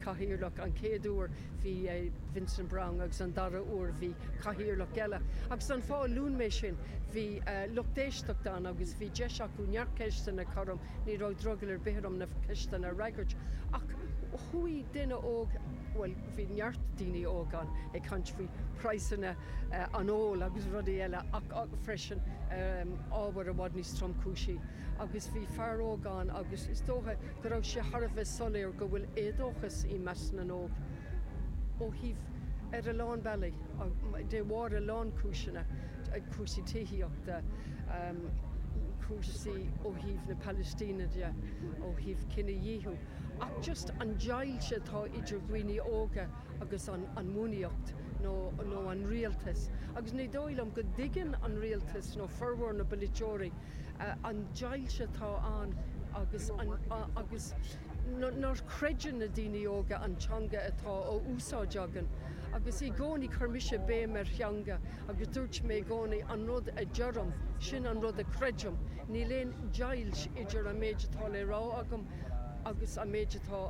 cathaoirleach. An chéad uair bhí Vincent Browne agus an dara huair bhí cathaoirleach eile. Agus an fáth a luann mé sin, bhí lucht éisteachta ann agus bhí deis acu neart ceisteanna a chur orm. Ní raibh drogall ar bith orm na ceisteanna a fhreagairt. Ach chuaigh duine óg, bhuel bhí neart daoine óga ann, ag caint faoi phraghsanna an óil agus rudaí eile ach freisin ábhair i bhfad níos tromchúisí. agus bhí fear óg ann agus is dócha go raibh sé thar a bheith soiléir go bhfuil éadóchas i measc na n-óg ó thaobh ar a lán bealaí de bharr a lán cúiseanna, cúrsaí tithíochta, cúrsaí ó thaobh na Palaistíne de, ó thaobh cinedhíothú ach just an deighilt atá idir dhaoine óga agus an an bhunaíocht nó nó an rialtas agus ní dóigh liom go dtuigeann an rialtas nó formhór na bpolaiteoirí an deighilt atá ann agus an, agus nach gcreideann na daoine óga an teanga atá á úsáid againn agus i gcónaí cuirimse béim ar theanga agus dúirt mé i gcónaí an rud a deirim, sin an rud a chreidim, níl aon deighilt idir an méid atá le rá agam agus an méid atá,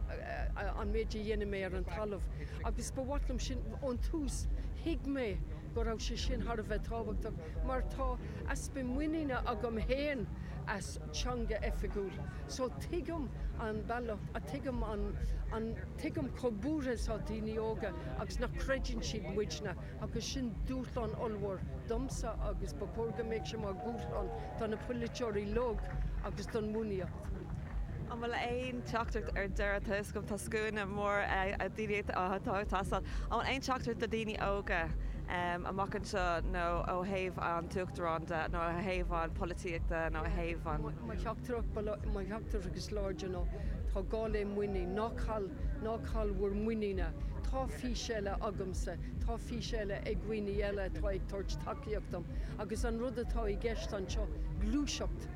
an méid a dhéanann mé ar an talamh agus ba mhaith liom sin, ón tús thuig mé go raibh sé sin thar a bheith tábhachtach mar tá easpa muiníne agam féin as teanga oifigiúil so tuigim an bealach a tuigim an an tuigim chomh buartha is atá daoine óga agus nach gcreideann siad muidne agus sin dúshlán ollmhór domsa agus ba chóir go mbeadh sé mar dhúshlán do na polaiteoirí uilig agus don bhunaíocht. An bhfuil aon teachtaireacht ar deireadh tar éis go tá scuaine mór daoine atá ag teastáil, an bhfuil aon teachtaireacht do dhaoine óga amach anseo nó ó thaobh an tUachtarán de nó ó thaobh an pholaitíochta nó ó thaobh an. Mo theachtaireacht, mo theachtaireacht is láidre ná tá gá le muinín, ná caill, ná caill bhur muinín. Tá fís eile agamsa, tá fís eile ag daoine eile atá ag tabhairt tacaíocht dom agus an rud atá i gceist anseo, gluaiseacht,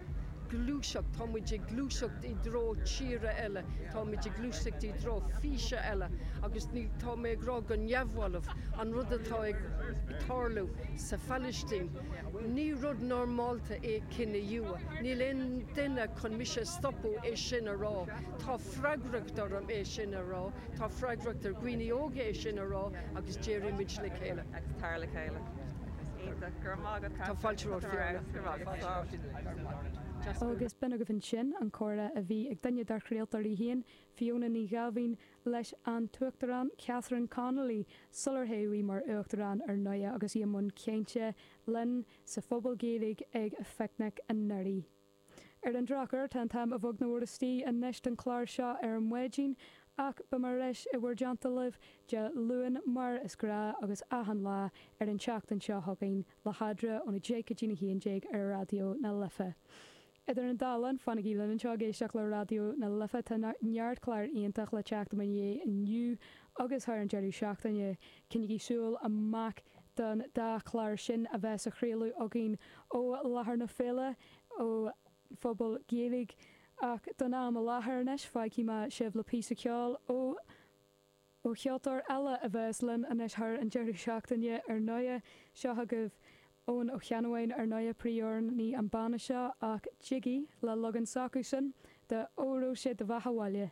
gluaiseacht, táimid ag gluaiseacht i dtreo tíre eile, táimid ag gluaiseacht i dtreo físe eile agus ní, tá mé ag rá go neamhbhalbh, an rud atá ag tarlú sa Phalaistín, ní rud normálta é cinedhíothú, níl aon duine chun mise a stopadh é sin a rá. Tá freagracht orm é sin a rá, tá freagracht ar dhaoine óga é sin a rá agus déarfaidh muid le chéile. Agus tar le chéile. Iontach. Go raibh maith agat Catherine. Tá fáilte romhat Fiona. Go raibh maith agat. Darmstadt. Agus b'in agaibh ansin an comhrá a bhí ag duine dár chraoltóirí féin, Fiona Ní Ghaibhín, leis an Uachtarán Catherine Connolly sular toghadh í mar Uachtarán ar ndóigh agus í i mbun cainte linn sa Phuball Gaeilge ag an Phicnic anuraidh. Ar an drochuair, tá an t-am i mbéal an dorais anois don chlár seo ar maidin ach beidh mé ar ais i bhur dteannta libh Dé Luain mar is gnáth agus achan lá ar an tseachtain seo chugainn. le hAdra ón 10 go dtí'n 11 ar Raidió na Life. Idir an dá linn, fanaigí linn anseo ag éisteacht le Raidió na Life, tá neart clár iontach le teacht i mo dhiaidh inniu agus thar an deireadh seachtaine. Coinnigí súil amach don dá chlár sin a bheas á chraoladh againn ó láthair na féile ó Phuball Gaeilge ach don am i láthair anois fágfaidh mé sibh le píosa ceoil ó Ó cheoltóir eile a bheas linn anois thar an deireadh seachtaine ar ndóigh, seo agaibh Eoghan Ó Ceannabháin, ar ndóigh, príomhamhránaí an bhanna seo, ach Jiggy, le leagan s'acusan, de Óró Sé Do Bheatha 'Bhaile.